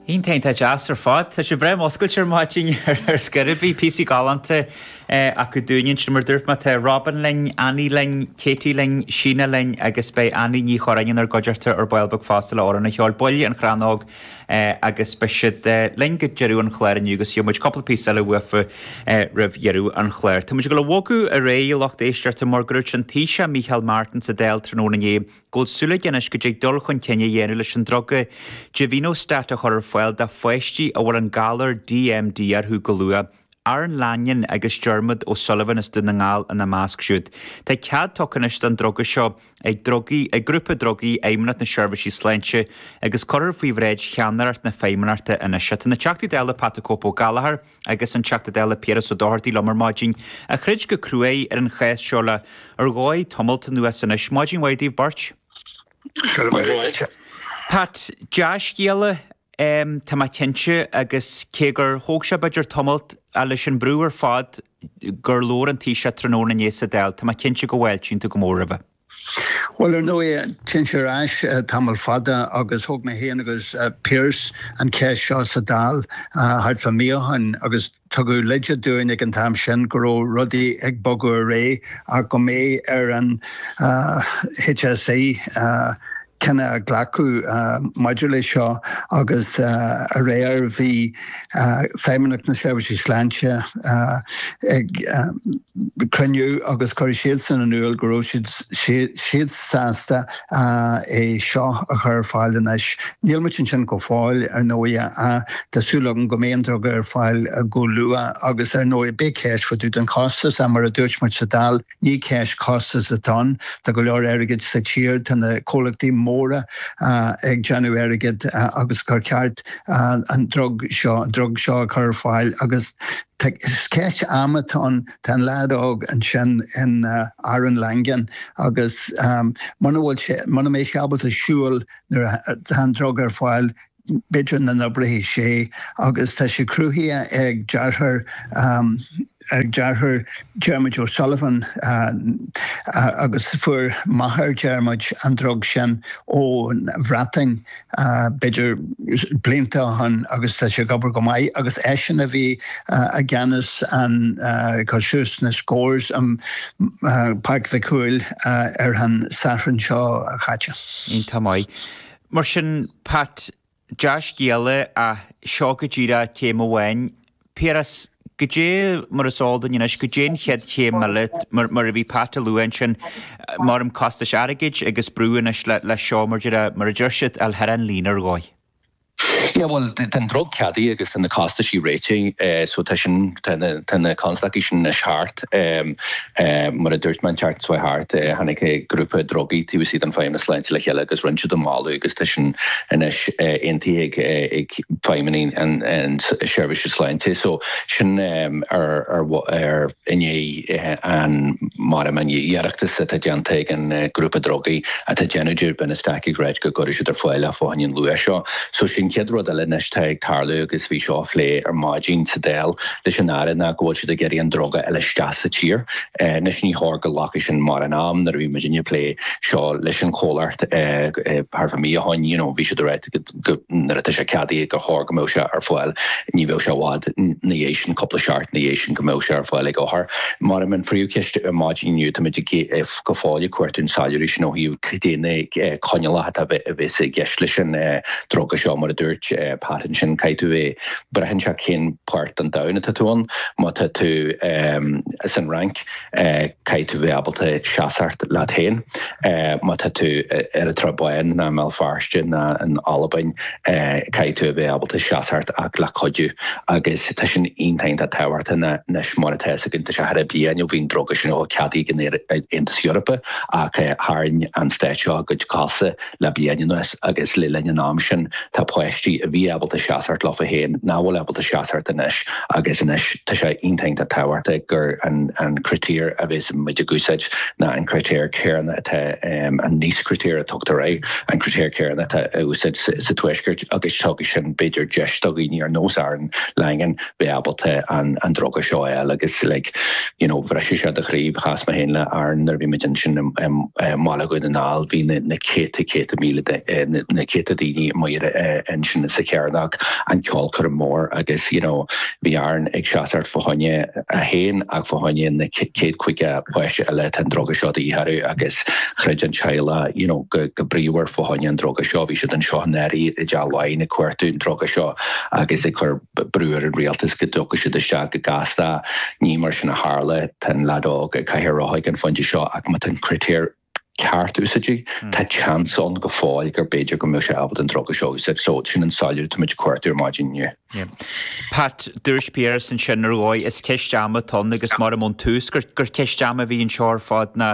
Iontach, iontach deas ar fad. Tá sibh breá muscailte ar maidin ar scor ar bith. Píosaí galánta acu dúinn ansin, mar dúirt mé. Tá Robyn linn, Annie linn, Katie linn, Síne linn agus beidh Annie Ní Churráin inár gcuideachta ar ball beag fosta le amhrán a cheol, baill An Chrannóg agus beidh siad linn go deireadh an chláir inniu agus gheobhaidh muid cúpla píosa eile uafu roimh dheireadh an chláir. Tá muid ag dul a bhogadh ar aghaidh, a lucht éisteachta, mar go raibh an Taoiseach Micheál Martin sa Dáil tráthnóna inné. go bhfuil súil aige anois go dtig dul chun cinn a dhéanamh leis an druga Givinostat a chur ar fáil do pháistí a bhfuil an galar DMD orthu go luath, Aaron Langan agus Diarmuid O'Sullivan as Dún na nGall ina measc siúd. Tá cead tugtha anois don druga seo ag drugaí, ag grúpa drugaí Fheidhmeannacht na Seirbhísí Sláinte agus cuirfear faoi bhráid cheannaireacht na Feidhmeannachta anois é. Tá na Teachtaí Dála Pat 'the Cope' Ó Gallchóir, agus an Teachta Dála Piaras Ó Dochartaigh liom ar maidin, a throid go cruaidh ar an chás seo le ar ndóigh tamalt anuas anois. Maidin mhaith daoibh beirt. Go raibh maith agat. Pat, Dea-scéala, tá mé cinnte, agus cé gur thóg sé b'fhéidir tamalt, a leis an mbrú ar fad, gur labhair an Taoiseach tráthnóna inné sa Dáil, tá mé cinnte go bhfáiltíonn tú go mór roimhe. Bhuel, ar ndóigh, téann sé ar ais tamall fada agus thóg mé féin agus Pearse an cheist seo sa Dáil thart fá mí ó shin agus tugadh leide dúinn ag an t-am sin go raibh rudaí ag bogadh ar aghaidh ach go mbeidh ar an HSE cinneadh a ghlacadh maidir leis seo agus aréir bhí Feidhmeannacht na Seirbhísí Sláinte ag cruinniú agus chuir siadsan in iúl go raibh siad siad sásta é seo a chur ar fáil anois. Níl muid ansin go fóill ar ndóigh ach tá súil agam go mbeidh an druga ar fáil go luath agus ar ndóigh beidh ceist fá dtaobh den chostas ach mar a dúirt muid sa Dáil Ní ceist costais atá ann, tá go leor airgid sa tír, tá na comhlachtaí móra ag déanamh airgid agus gur cheart an drug seo, drug seo, a chur ar fáil agus is ceist ama atá ann. Tá an leaid óg ansin in Aaron Langan agus muna bhfuil sé, muna mbeidh sé ábalta siúl nuair atá an drug ar fáil, b'fhéidir nach n-oibreoidh sé agus tá sé cruthaithe ag deartháir ag deartháir Diarmuid O'Sullivan agus fuair máthair Diarmuid an drug sin ón Bhreatain b'fhéidir blianta ó shin agus tá sé ag obair go maith agus eisean a bhí i gceannas an cur suas na scores i Páirc Mhic Cumhaill ar an Satharn seo chaite. Iontach maith. Mar sin, Pat, dea-scéala ach seo go díreach céim amháin. Piaras, Goidé mar is eol dúinn anois, goidé an chéad chéim eile? Mar a bhí Pat a lua ansin, maram costais airgid agus brú anois leis seo, mar a deir siad, a fháil thar an líne ar dhóigh. Yeah, bhuel, tá an drug ceadaithe agus tá na costaisí réitithe, so tá sin, tá na constaicí sin anois thart. Mar a dúirt mé an tseachtain seo thart, tháinig grúpa drugaí taobh istigh den Feidhmeannas Sláinte le chéile agus rinn siad an moladh agus tá sin anois aontaithe ag Feidhmeannacht na Seirbhíse Sláinte. So sin ar i ndiaidh an maram an iarratas atá déanta ag an grúpa drugaí atá ag déanamh givinostat ag ráit go gcuirfidh siad ar fáil é fá choinne an luach seo. So sin céad rud eile anois atá ag tarlú agus bhí seo á phlé ar maidin sa Dáil. leis an Aire ná go bhfuil siad ag iarraidh an druga a fháil isteach sa tír. Anois ní chóir go nglacfadh sin mórán am nuair a bhí muidinne ag plé seo leis an chomhlacht thart fá mí ó shin you know bhí siad a rá go nuair atá sé ceadaithe gur chóir go mbeadh sé ar fáil ní bheadh sé i bhfad na dhiaidh sin cúpla seachtain na dhiaidh sin go mbeadh sé ar fáil ag othair. Maram an phríomhcheist ar maidin inniu tá muid go fóill ag cuartú an soiléiriú sin ó thaobh cad é na coinníollacha atá a bheas i gceist leis an druga seo mar a dúirt Pat ansin caithfidh tú é braitheann sé cén páirt den domhan atá tú ann. Má tá tú san Fhrainc caithfidh tú bheith ábalta seasacht leat féin. Má tá tú ar an tSrath Bán ná i mBéal Feirste ná in Albain caithfidh tú a bheith ábalta seasacht ach le cuidiú. Agus tá sin iontach iontach tábhachtach anois mar atá fhios againn tá sé thaire bliain ó bhí an druga sin ceadaithe ag an Aontas Eorpach ach tharraing an Stát seo a gcuid cosa Le bliain anuas agus le linn an am sin, tá páistí a bhí ábalta seasacht leofa féin nach bhfuil ábalta seasacht anois agus anois tá sé iontach iontach tábhachtach gur an critéir a bheas muid ag úsáid ná an critéir céarna atá an NICE critéir a tugtar air, an critéir céarna atá á úsáid sa Tuaisceart agus tabharfaidh sin b'fhéidir deis do dhaoine ar nós Aaron Langan, bheith ábalta an druga seo a fháil agus you know bhriseadh sé do chroí. Chas mé féin le Aaron nuair a bhí muid ansin i mBaile Dhún na nGall, bhí na céadta céadta míle na céadta daoine amuigh ansin sa Chearnóg, an ceolchoirm mór agus you know bhí Aaron ag seasamh fá choinne é féin ach fá choinne na céad caoga páiste eile atá an druga seo de dhíth orthu agus throid an teaghlach you know go bríomhar fá choinne an druga seo, bhí siad anseo i ndáiríre i dTeach Laighean ag cuartú an druga seo agus ag cur brú ar an rialtas go dtiocfadh siad isteach go gasta. Ní mar sin a tharla. Tá an leaid óg i gcathaoir rotha ag an phointe seo ach má tá an critéar ceart úsáidte, tá seans ann go fóill gur b'fhéidir go mbeadh sé ábalta an druga seo a úsáid. So, sin an soiléiriú atá muid ag cuartú ar maidin inniu. Pat, dúirt Piaras ansin ar dhóigh, is ceist ama atá ann agus maram ón tús gur ceist ama a bhí anseo ar fad ná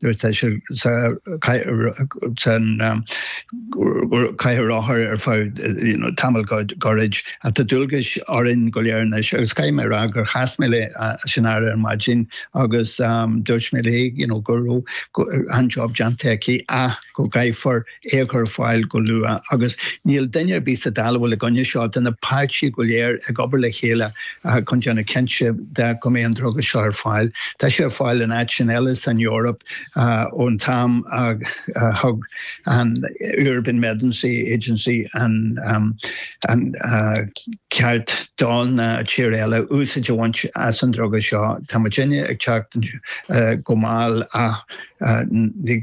nuair atá sé sa chathaoir rotha ar feadh tamall gairid. Tá dualgais orainn go léir anois agus caithfidh mé a rá gur chas mé le sean-Aire ar maidin agus agus dúirt mé léi go raibh an-jab déanta aici ach go gcaithfear é a chur ar fáil go luath agus níl duine ar bith sa Dáil atá i gcoinne seo. Tá na páirtithe go léir ag obair le chéile chun déanamh cinnte de go mbeidh an druga seo ar fáil. Tá sé ar fáil in áiteanna eile san Eoraip ón t-am a thug an European Medicines Agency an ceart do na tíortha eile úsáid a bhaint as an druga seo. Tá muid ag teacht go mall ach ní